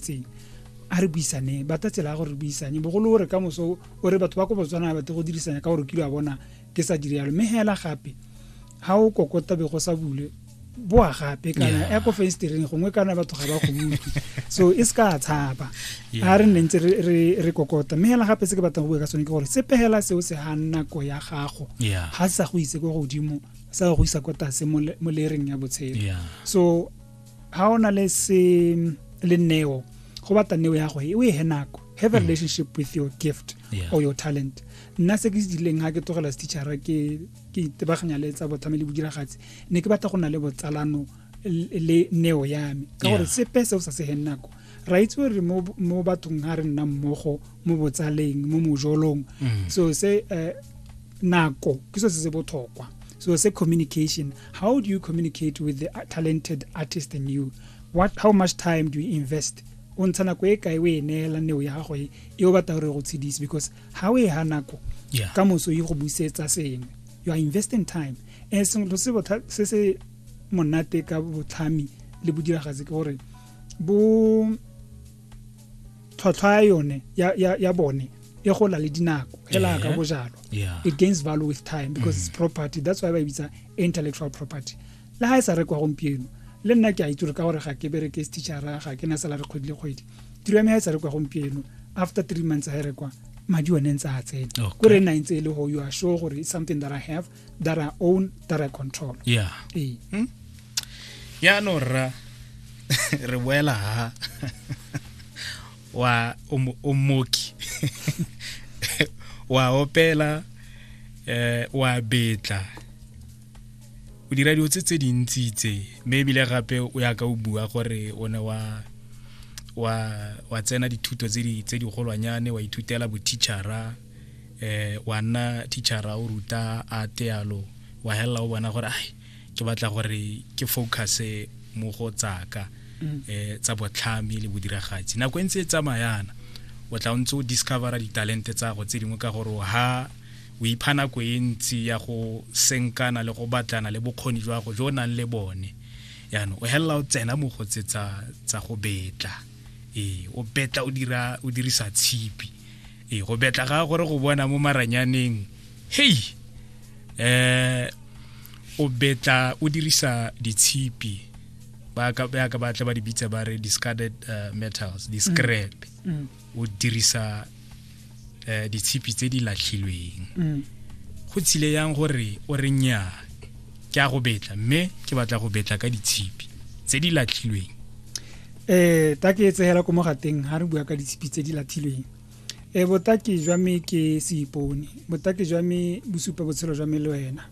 tseng a re buisane ba tla tsela ya gore re buisane bogolo o re ka moso o re batho ba ko botswana ba tle go dirisanya ka gore kilo a bona ke sa dire yalo mme hela gape ha o kokota be go sa bule boa gape kana ya ko fenstereng gongwe kana batho ga ba go utlwe so e se ka tshaba a re nne ntse re kokota mme hela gape se ke batlang go bua ka sone ke gore sepegela seo se ga nako ya gago ga se sa go itse ko godimo sa go isa kwa tase mo lereng ya botshelo so ga o na le se le neo go batla neo ya go e o e he nako have a mm. relationship with your gift yeah. or your talent nna se ke se dileng ga ke tlogela setitšhara ke itebaganya le tsa botlhame le bodiragatsi ne ke batla go na le botsalano le neo ya me ka gore sepe se o sa segen nako ra itse gore mo bathong ga re nna mmogo mo botsaleng mo mojolong mm. so se eh, nako ke se se botlhokwa so se communication how do you communicate with the talented artist in you what how much time do you invest o ntsha nako e kae o e neela neo ya gago e e o batla gore go tshedise because ga o e ga nako ka moso e go busetsa sengwe you are investing time and sengwe se se monate ka botlhami le bodiragatsi ke gore bo tlhwatlhwa ya yone ya bone e gola le dinako hela ka bojalo it gains value with time because it's mm. property that's why ba e bitsa intellectual property le ha e sa rekwa gompieno le nna ke a itse gore ka gore ga ke bereke stitchara ga ke na salary kgwedi le kgwedi tiro ya me ga e sa rekwa gompieno after three months ga e rekwa madi one ntse a tsena ko re nna ntse e le go you are sure gore it's something that i have that are own that are control yeah ee ya no rra re boela ha wa o mo- o moki wa opela eh wa betla o dira dilo tse tse dintsi tse mme ebile gape o ya ka o bua gore o ne wa wa wa tsena dithuto tse di tse di golwanyane wa ithutela boteachara eh wa nna teachera o ruta a tealo wa helela o bona gore ai ke batla gore ke focus mo go tsaka mm. eh tsa botlhami le bodiragatsi nako e ntse e tsamayana o tla o ntse o discovera ditalente tsa go tse dingwe ka gore ha o ipha nako e ntsi ya go senkana le go batlana le bokgoni jwa go jo nang le bone yaanong o helela o tsena mo go tse tsa go betla ee o betla o dirisa tshipi e go betla ga gore go bona mo maranyaneng hei eh o betla o dirisa ditshipi ba ka ba ka batla ba di bitsa ba re discarded uh, metals di scrap mm. mm. o dirisa eh ditshipi tse di latlhilweng mm. go tsile yang gore o re nyaa ke a go betla mme ke batla go betla ka ditshipi tse di latlhilweng um ta ke e tsegela ko mogateng ga re bua ka ditshipi tse di latlhilweng e botaki jwa me ke seipone botaki jwa me bosupa botshelo jwa me le wena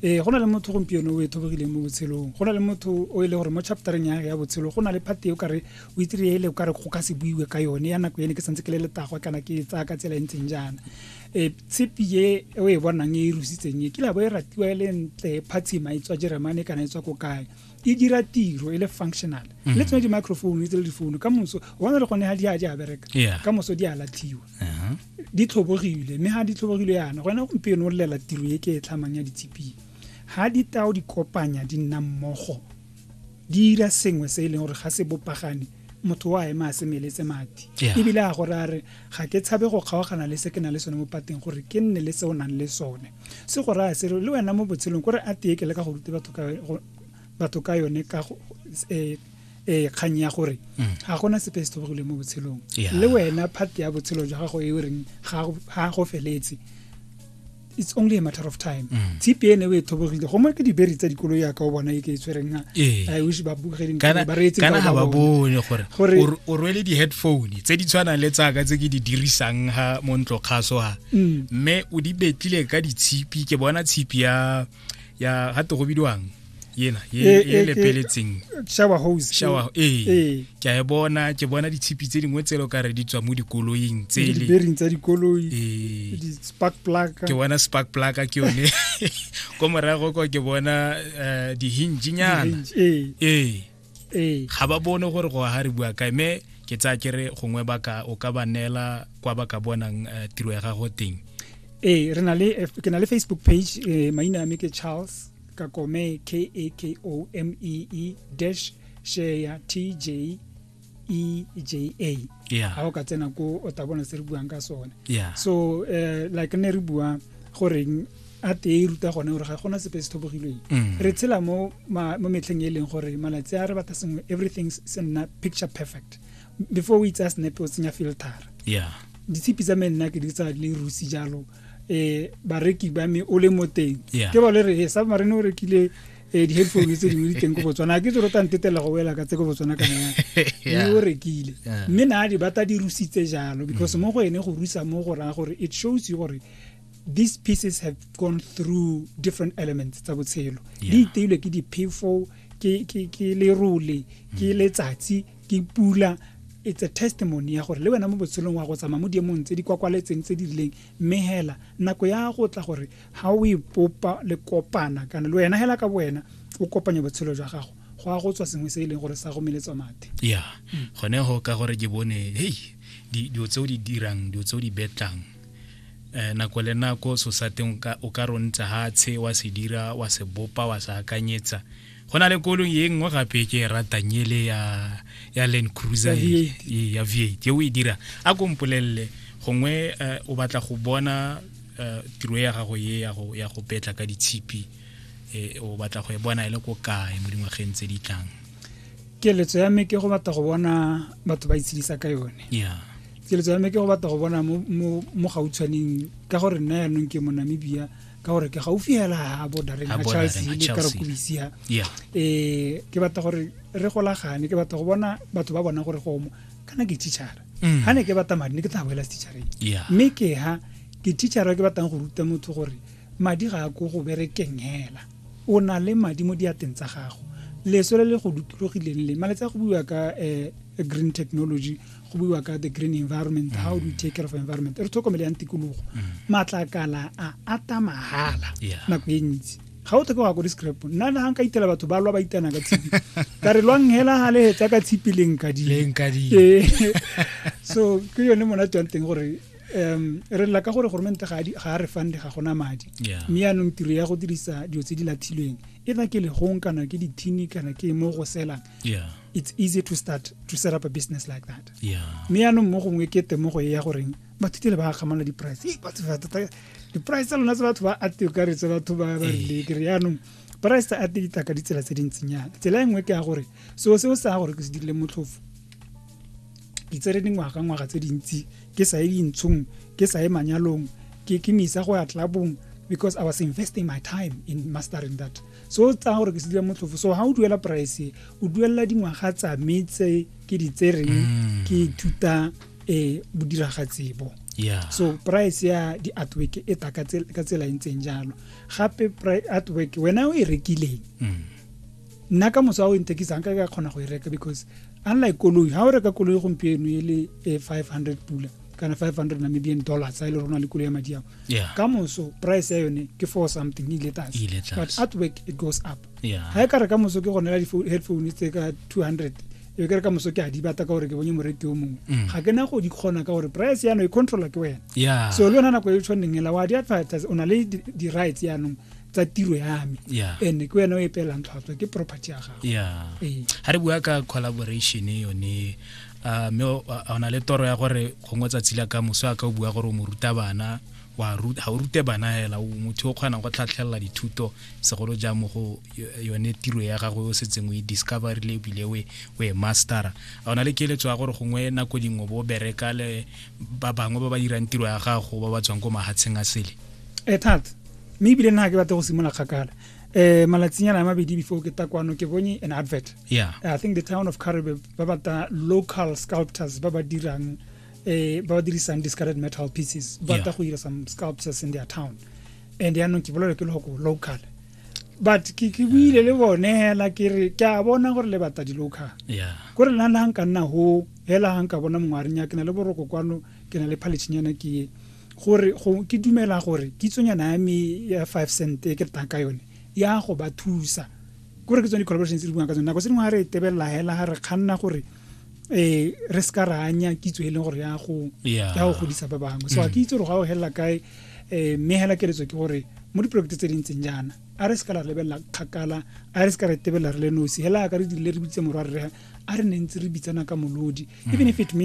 e go na le motho gompieno o e thobogileng mo botshelong go na le motho o e le gore mo chaptereng ya ya botshelo go na le phate o kare o itire ele o kare go ka se buiwe ka yone ya nako ene ke santse ke le letago kana ke tsaya ka tsela e ntseng jaana e tshipi ye e o e bonang e e rusitseng e kila bo e ratiwa e le ntle phatshima e tswa jeremane kana e tswa ko kae e dira tiro e le functional le tsone di-microphone tse le difounu ka moso bona le gone ga di a di a bereka Yeah. ka moso di a latlhiwa Aha. di tlhobogile mme ga di tlhobogile yana gona gompieno o lelela tiro e ke e tlhamang ya ditshipi ga ditao di kopanya di nna mmogo di ira sengwe se e leng gore ga se bopagane motho wa ema a semeletse madi ebile a gore a re ga ke tshabe go kgaogana le se ke na le sone mo pateng gore ke nne le se o nang le sone se go raya se re le wena mo botshelong kore a teye ke le ka go rute batho ka yone ka eh, eh, kgang ya gore mm. ga gona sepe se thobogileng mo botshelong le wena phate ya botshelo jwa gago e o reng ga go feletse it's only a matter of time Mm. tshipi ene o e thobogile gongwe ke diberi tsa dikolo yaka o bona e ke e tshwereng na Ee. i wish ba bogeding kana ba reetse kana ga ba bone gore Gore- o r- o rwele di-headphone tse di tshwanang le tsaka tse ke di dirisang ha mo ntlo kgaso ha Mm. mme o di betlile ka ditshipi ke bona tshipi ya ya ga te go bidiwang yena e, e, e lepeletseng shower hose shower ee, ee. ke a e bona ke bona ditshipi tse dingwe tse lo ka re di tswa mo dikoloing tsele bearing tsa dikoloi ee. di spark plug ke bona spark plug ke yone ko morago ko ke bona eh, di hinge nyana ee ee. ga ba bone gore go ga re bua kae mme ke tsaya ke re gongwe baka o ka ba neela kwa ba ka bonang eh, tiro ya gago teng ee re na le eh, ke na le facebook page eh, maina a me ke charles kakome k a k o m e e dash share t j e j a yeah. ga o ka tsena ko o ta bona se re buang ka sone yeah. so uh, like ne re bua goreng a tee e ruta gone gore ga gona sepe se thobogilweng mm. re tshela mo mo metlheng e leng gore malatsi a re batla sengwe everything se nna picture perfect before o itsaya snap o tsenya filter yeah ditshipi tsa me nna ke di tsa le rusi jalo eh bareki ba me o le mo teng ke ba le re eh, sa marene o rekile eh di-headphone tse dingwe di teng ko botswana ke tsero tang tetela go wela ka tse ko botswana ka naya mme o rekile mme na di bata di rusitse jalo because mm. mo go ene go rusa mo go raya gore it shows you gore these pieces have gone through different elements tsa botshelo di iteilwe ke diphefo ke lerole ke mm. letsatsi ke pula it's a testimony ya gore le wena mo botshelong wa go tsamaya mo diemong tse di kwakwaletseng tse di rileng mme hela nako ya go tla gore ga o ipopa le kopana kana le wena hela ka wena o kopanya botshelo jwa gago go a go tswa sengwe se e leng gore sa go meletswa mathe ya mm. gone go ka gore ke bone hei dilo tse o di dirang dilo tse o di betlang eh, nako le nako so sa teng o ka rontsa hatshe wa se dira wa se bopa wa se akanyetsa go na le kolong ye nngwe gape ke e ratang ele ya ya land cruiser e, e, ya v ke o e dira a ko mpolelele gongwe eh, o batla go bona eh, tiro ya gago ye ya go petla ka ditshipi eh, o batla go e bona e le ko kae mo dingwageng tse di tlang keletso ya me ke go batla go bona batho ba itshedisa ka yone yeah keletso ya me ke go batla go bona mo gautshwaneng ka gore nna yanong ke mo namibia ka gore ke gaufi hela ha bodareng ga charles le ka rekobisia um eh, ke batla gore re golagane ke batla go bona batho ba bona gore gomo kana ke teachara ga mm. ne ke batla madi ne ke tla boela teachareng mme ke ha ke teachara ke batlang go ruta motho gore madi ga a ko go berekeng hela o na le madi mo diateng tsa gago leso le le go dutologileng le malatsi a go buiwa ka um green technology go buiwa ka the green environment mm. how do we take care of environment re tlhokomele yang tikologo mm. matlakala a ata mahala nako e ntsi ga o tlhoke go ya ko di-scrap nna na nka itela batho ba lwa ba itana ka tshipi ka re lwang hela ga lehetsa ka tshipi le nkadile so ke yone monate wa teng gore um re lela ka gore goromente ga a re fande ga gona madi mme yaanong tiro ya go dirisa dilo tse di lathilweng e na ke legong kana ke dithini kana ke mo go selang yeah it's easy to start to set up a business like that yeah mme yaanong mo gongwe ke temogo e ya goreng batho tele ba kgamala di-price Ee, batho ba tota- di-price tsa lona tse batho ba ate o kare tse batho ba ba rile kere yaanong price tsa ate di tla ka ditsela tse dintsinyana tsela e nngwe ke ya gore seo seo sa gore ke se dirile motlhofo ke tsere dingwaga ngwaga tse dintsi ke sa ye dintshong ke sa ye manyalong ke ke me isa go ya tlabong because i was investing my time in mastering that so o tsaya gore ke sedile motlhofo so ga o duela price o duelela dingwaga tsa me tse ke di tsereng mm. ke ithuta um bodiragatsi bo so price ya di-artwork e ta ka tsela e ntseng jalo gape artwork wena o e rekileng mm. nna ka moso a o ntekisang ka ka kgona go e reka because unlike koloi ga o reka koloi gompieno e le e five hundred pula kana 500 namibian dollars a e le rona le kulo ya madi ao yeah. ka moso price ya yone ke for something e ile tlase but at work it goes up yeah. ga e ka re ka moso ke gone la di-headphone tse ka 200 e kere ka moso ke a di bata ka gore ke bonye moreki o mongwe mm. ga ke na go di kgona ka gore price yano e controla ke wena yeah. so le yona nako e tshwaneng ela wa di-advertise o na le di-rights yanong tsa tiro ya me and ke wena o e pelang tlhwatlhwa ke property ya gago ga re bua ka collaboration yone a mme o na le toro ya gore gongwe tsatsi la ka moso a ka o bua gore o mo ruta bana wa ga o rute bana hela o motho o kgonang go tlhatlhelela dithuto segolo jang mo go yone tiro ya gagwe o setseng o e discoverile ebile o e mastera a o na le keletso ya gore gongwe nako dingwe bo bereka le ba bangwe ba ba dirang tiro ya gago ba ba tswang ko mahatsheng a sele e thata mme ebile nna ke batla go simolola kgakala um malatsinyana a mabedi before ke takwano ke bone an advert yeah i think the town of karibe ba bata local sculptors ba ba dirang eh ba ba dirisang discarded metal pieces ba ta go dira some sculptures in their town and ya nong ke bolela ke le go local but ke ke buile le bone hela ke re ke a bona gore le bata di local yeah go re lana nka nna ho hela nka bona mongwaring ya ke na le boroko kwano ke na le phalichinyana ke gore go ke dumela gore kitsonyana ya me ya 5 cent e ke tang ka yone ya go ba thusa ke gore ke tsone di-collaborations tse di buang ka tsone nako tse dingwe ga re tebelela hela ga re kganna gore eh re se ka ra anya kitso e leng gore ya go ya go godisa ba bangwe so ga ke itse gore ga o helela kae eh mme hela keletso ke gore mo diporokete tse di ntseng jaana a re se ka la lebelela kgakala a re se ka re tebelela re le nosi hela ka re dirile re bitse morwa rre a re ne ntse re bitsana ka molodi even if it means